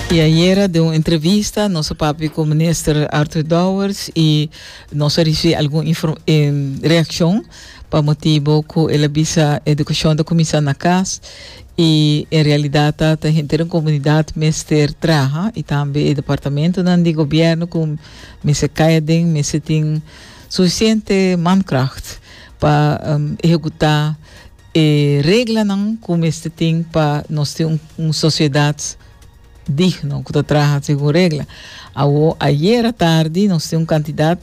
Y ayera den un entrevista nos a papia cu Minister Arthur Dowers y nos a ricibi algun reaccion pa motibo cu el a bisa educacion ta cuminsa na cas y en realidad ta ta henter den comunidad mester traha y tambe e departamentonan di gobierno cu mester caya den mester tin suficiente mankracht pa ehecuta E reglanan ku mester tin pa nos tin un, un sosiedat digno, ku ta traha segun regla. Awo, ayera tardi nos tin un kantidat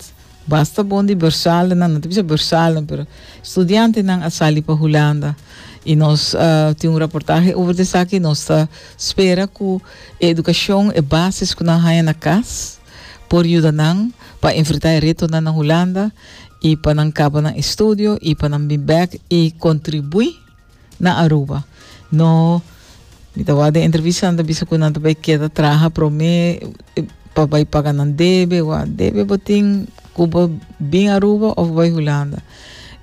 basta bon di bërsaldenan, no ta bisa bërsalden, pero studiantenan a sali pa Hulanda. I nos a tin un raportahe over di esaki. Nos ta spera ku e edukashon, e basis ku nan haña na kas, por yuda nan pa enfrentá e retonan na Hulanda. y pa nan caba nan estudio y pa nan bin back y contribui na Aruba. No, mi ta wak den entrevista nan ta bisa cu nan ta bay keda traha prome pa bay paga nan debe, wa debe bo tin cu bo bin Aruba of bay Hulanda.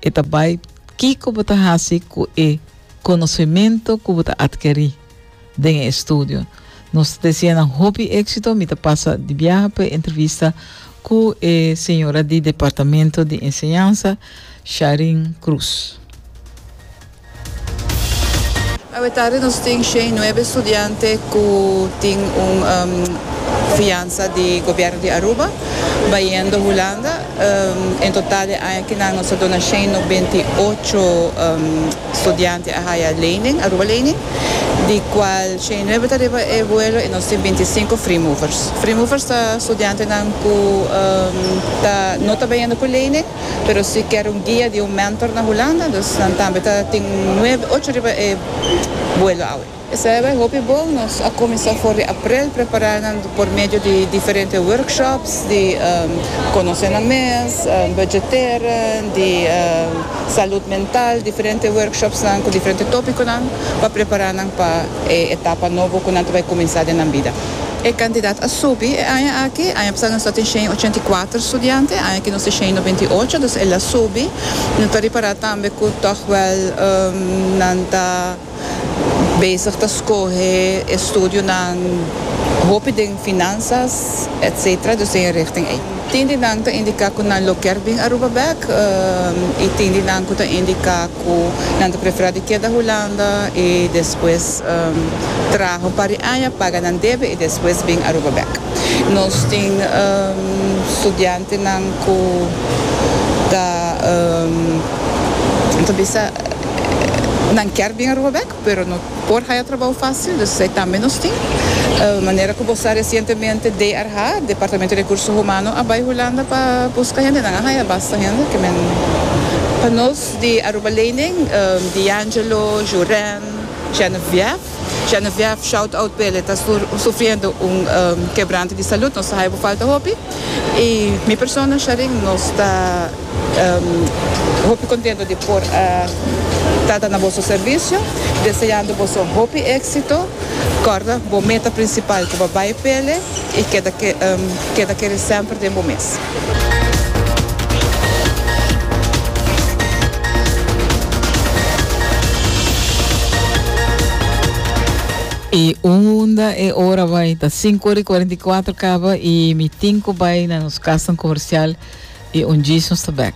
E ta bay kico bo ta haci cu e conocemento cu bo ta adkeri. Den e estudio nos ta deseá nan hopi éksito. Mi ta pasa di biaha pa e entrevista ku e señora di Departamento di Enseñansa, Sharin Cruz. Awetarde nos tin shen nuebe studiante ku tin un fiansa di Gobièrnu di Aruba bayendo Hulanda. En total e aña kinan nos a dona shen nobenta i ocho. Studiante a haya lening, Aruba Lening, di cual shen y nuebe ta riba e vuelo y nos tin binti cinco free movers. Free movers ta studiantenan cu ta no ta beyendo cu lening pero si kier un guia di un mentor na Hulanda, dus nan tambe ta tin nuebe, ocho riba e vuelo awe. Esei bai hopi bon. Nos a kuminsá for di aprel prepará nan por medio di diferente workshops di konosé nan mes, budgetera, di salud mental, diferente workshopsnan ku diferente tópikonan pa prepará nan pa e etapa nobo ku nan ta bai kuminsá den nan bida. E kantidat a subi e aña aki. Aña pasá nos tabata shen ochenta i kuater studiante, aña aki nos tin shen noventa i ocho, dus el a subi. No ta ripará tambe ku tòg wèl nan ta. bezig ta scohe estudionan hopi den finanzas etc. Dus tin e richting ey. Tin di nan ta indica cu nan lo kier bin Aruba bek y tin di nan cu ta indica cu nan ta prefera di keda Hulanda y despues traha un par di aña paga nan debe y despues bin Aruba bek. Nos tin studiantenan cu ta bisa. nan kier bin Aruba bek pero no por haya trabou facil dus esei tambe nos tin manera cu bo sa recientemente DRH, Departamento di Recurso Humano, a bay Hulanda pa busca hende nan a haya basta hende cu men pa nos di Aruba Lening, D'Angelo, Juren, Geneviève. Geneviève Shoutout p'e le ta sufriendo un quebranto di salud nos ta hayo bo falta hopi y mi persona Sharin nos ta hopi contento di por a trata na boso servicio deseando boso hopi exito corda bo meta principal cu bo bay p'e le y keda kere semper den bo mes. Y unda e ora bai? Ta cinco ora y cuarenta y cuatro caba y mi tin cu bai na nos casa comercial y un djis nos ta back.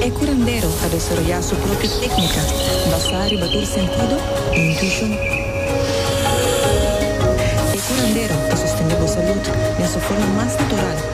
E curandero a desaroyá su propio técnica basá riba tur sentido i intuishon. E curandero ta sostendé bo salud den su forma mas natural.